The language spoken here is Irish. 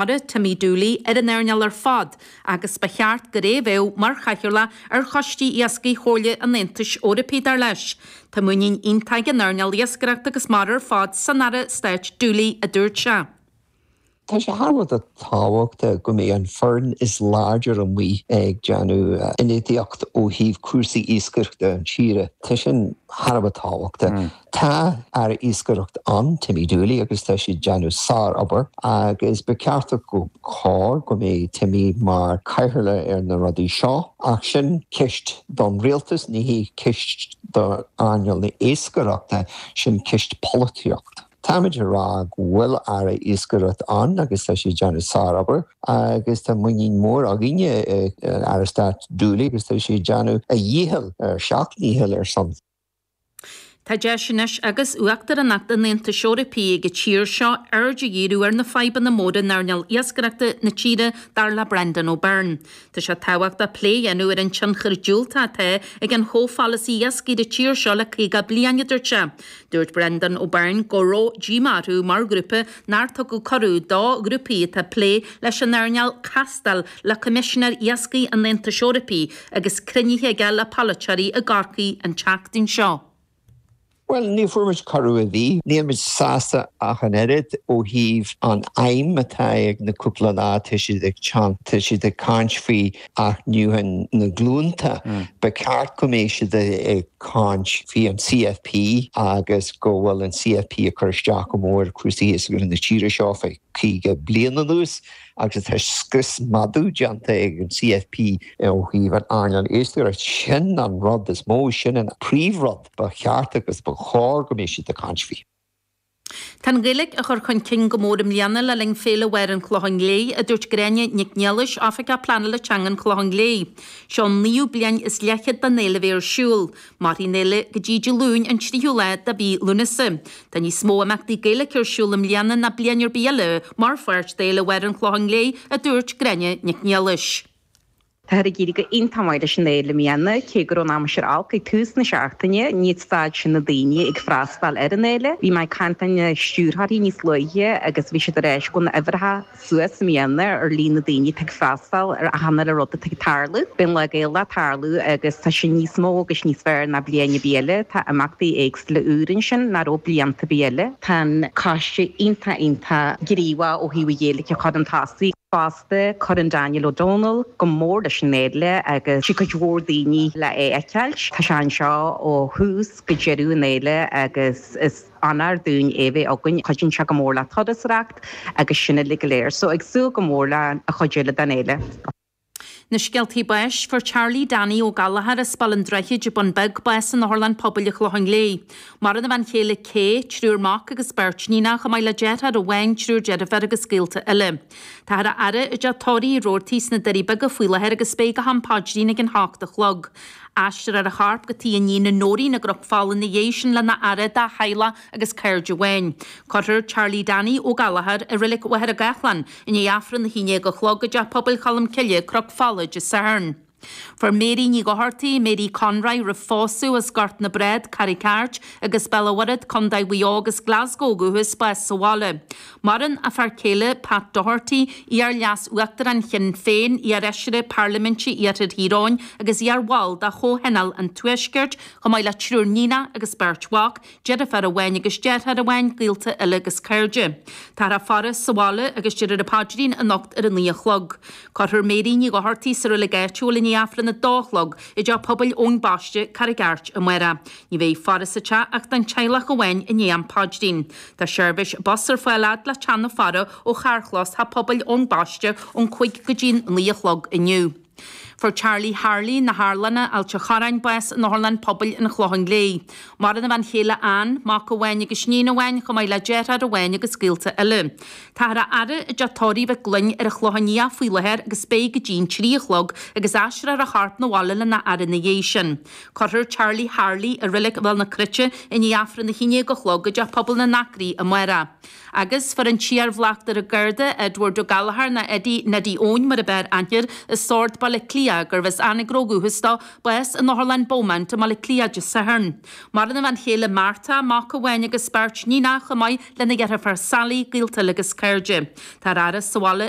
Aire Timmy Dooley ar an earnáil ar fad agus ba cheart gurb é a bheadh mar chathaoirleach ar Choiste Iascaigh Chomhairle an Aontais Eorpaigh, dar leis. Tá muinín iontach ag an earnáil iascaireachta agus mara ar fad san Aire Stáit Dooley, a dúirt sé. Tá sé thar a bheith tábhachtach go mbeidh an foireann is láidre amuigh ag déanamh ionadaíocht ó thaobh cúrsaí iascaireachta an tíre. Tá sin thar a bheith tábhachtach. Tá Aire Iascaireacht ann, Timmy Dooley, agus tá sé ag déanamh sárobair agus ba ceart agus cóir go mbeidh Timmy mar cathaoirleach ar na rudaí seo. Ach sin ceist don rialtas, ní hí ceist d'earnáil na iascaireachta, sin ceist polaitíocht. Táimid ag rá go bhfuil Aire Iascaireacht ann agus tá sé ag déanamh sárobair agus tá muinín mór againne i Aire Stáit Dooley agus tá sé ag déanamh a dhícheall, a sheacht ndícheall, ar son. Tá deis anois agus Uachtaránacht an Aontais Eorpaigh ag an tír seo aird a dhíriú ar na fadhbanna móra in earnáil iascaireachta na tíre, dar le Breandán Ó Beirn. Tá sé tábhachtach plé a dhéanamh ar an tionchar diúltach atá ag an chomhpholasaí iascaigh ar an tír seo le 50 bliain, a dúirt sé. Dúirt Breandán Ó Beirn go raibh díomá orthu mar ghrúpa nár tugadh cuireadh do ghrúpaí atá ag plé leis an earnáil castáil, le Coimisinéir Iascaigh an Aontais Eorpaigh agus cruinnithe aige le polaiteoirí i gCorcaigh an tseachtain seo. Bhuel, ní bhfuair muid cuireadh ar bith. Níl muid sásta ach an oiread ó thaobh an aidhm atá ag na cúpla lá tá siad ag teacht, tá siad ag caint faoi athnuachan na glúnta. Ba cheart go mbeidh siad ag caint faoi an CFP agus go bhfuil an CFP ag cur isteach go mór ar chúrsaí iascaigh na tíre seo faoi. caoga bliain anuas agus tá scrios meadú déanta ag an CFP ó thaobh an earnáil iascaireachta. Sin an rud is mó, sin an príomhrud ba cheart agus ba chóir go mbeadh siad ag caint faoi. Tá an Ghaeilge á chur chun cinn go mór i mbliana le linn Féile Mháire an Chlocháin Léith, a dúirt Gráinne Nic Niallais, Oifigeach Pleanála Teanga an Chlocháin Léith. Seo an naoú bliain is leathchéad den fhéile bheith ar siúl. Mairfidh an fhéile go dtí Dé Luain an tríú lá de mhí Lúnasa. Tá níos mó imeachtaí Gaeilge ar siúl i mbliana ná bliain ar bith eile mar pháirt d'Fhéile Mháire an Chlocháin Léith, a dúirt Gráinne Nic Niallais. Táthar ag éirí go h-iontach maith leis an fhéile i mbliana. Cé go raibh an aimsir olc ag tús na seachtaine, níor stad sin na daoine ag freastal ar an fhéile. Bhí mé ag caint lena stiúrthóirí níos luaithe agus bhí siad ag ráit go bhfuil na huimhreacha suas i mbliana ar líon na daoine atá ag freastal ar achan uile rud atá ag tarlú. Bíonn Lá Gaelach ag tarlú agus tá sé níos mó agus níos fearr ná bliain ar bith eile. Tá imeachtaí éagsúla úr ansin nach raibh blianta ar bith eile. Tá an coiste iontach iontach gníomhach ó thaobh an Ghaeilge a chur chun tosaigh fosta. Cuireann Daniel O'Donnell go mór leis an Fhéile agus tiocfaidh cuid mhór daoine le é a fheiceáilt. Tá sé anseo ó thús go deireadh an Fhéile agus is. Onóir dúinn é bheith againn. Cuidíonn sé go mór le turasóireacht agus sin uilig go léir. So ag súil go mór leis an chuid eile den fhéile. Na scéaltaí báis, Fuair Charlie Danny Ó Gallchóir as Baile an Droichid, An Bun Beag bás in Otharlann Pobail an Chlocháin Léith. Maireann a bhean chéile Kay, triúr mac agus beirt níonach, chomh maith le deartháir amháin, triúr deirféar agus gaolta eile. Táthar á fhaire i dTeach Tórraimh Roarty sna Doirí Beaga faoi láthair agus beidh go ham Paidrín ag a hocht a chlog. Aistreofar a chorp go tigh a iníne Nóirín i gCnoc Fola ina dhiaidh sin lena fhaire dá theaghlach agus cairde amháin. Cuirfear Charlie Danny, Ó Gallchóir, i Reilig Mhachaire Gathlán i ndiaidh Aifreann a haon déag a chlog i dTeach Pobail Cholm Cille, Cnoc Fola, Dé Sathairn. Fuair Mary Ní Dhochartaigh, Mary Conroy, roimh phósadh, as Gort na Brád, Carraig Airt, agus Béal an Mhuirthead, Co Mhaigh Eo agus Glasgow, ó dhúchas, bás sa bhaile. Maireann a fear céile Pat Doherty, iar-Leas-Uachtarán Shinn Féin, iarfheisire Parlaiminte Iarthar Thír Eoghain agus iarbhall de Chomhthionól an Tuaiscirt, chomh maith le triúr níonach agus beirt mhac, deirfiúr amháin agus deartháir amháin, gaolta eile agus cairde. Táthar á faire sa bhaile agus déarfar an paidrín anocht ar a naoi a chlog. Cuirfear Mary Ní Dhochartaigh sa reilig áitiúil i ndiaidh Aifreann a dó a chlog i dTeach Pobail Eoin Baiste, Carraig Airt, amárach. Ní bheidh faire sa teach ach don teaghlach amháin i ndiaidh an paidrín. Tá seirbhís bus ar fáil fhad le Teach na Faire ó charrchlós Theach Pobail Eoin Baiste ón cúig go dtí'n naoi a chlog inniu. Fuair Charlie Harley na hArlanna, Ailt an Chorráin bás in Otharlann Pobail an Chlocháin Léith. Maireann a bhean chéile Ann, mac amháin agus iníon amháin, chomh maith le deartháir amháin agus gaolta eile. Táthar á fhaire i dTeach Tórraimh Mhic Gloinn ar an Chlochán Liath faoi láthair agus beidh go dtí'n trí a chlog agus aistreofar a chorp na bhaile lena fhaire ina dhiaidh sin. Cuirfear Charlie Harley i Reilig Bhéal na Cruite i ndiaidh Aifreann a hAon Déag a Chlog i dTeach Pobail na nAcraí amárach. Agus fuair an t-iar-Bhleachtaire Garda, Edward Ó Gallchóir, nó Eddie Neddy Eoin mar ab fhearr aithne air i Sord, Baile Átha Cliath, gurbh as Anagaire ó dhúchas dó, bás in Otharlann Beaumont i mBaile Átha Cliath Dé Sathairn. Maireann a bhean chéile Martha, mac amháin agus beirt níonach chomh maith lena dheirfiúr Sally, gaolta eile agus cairde. Táthar á fhaire sa bhaile i.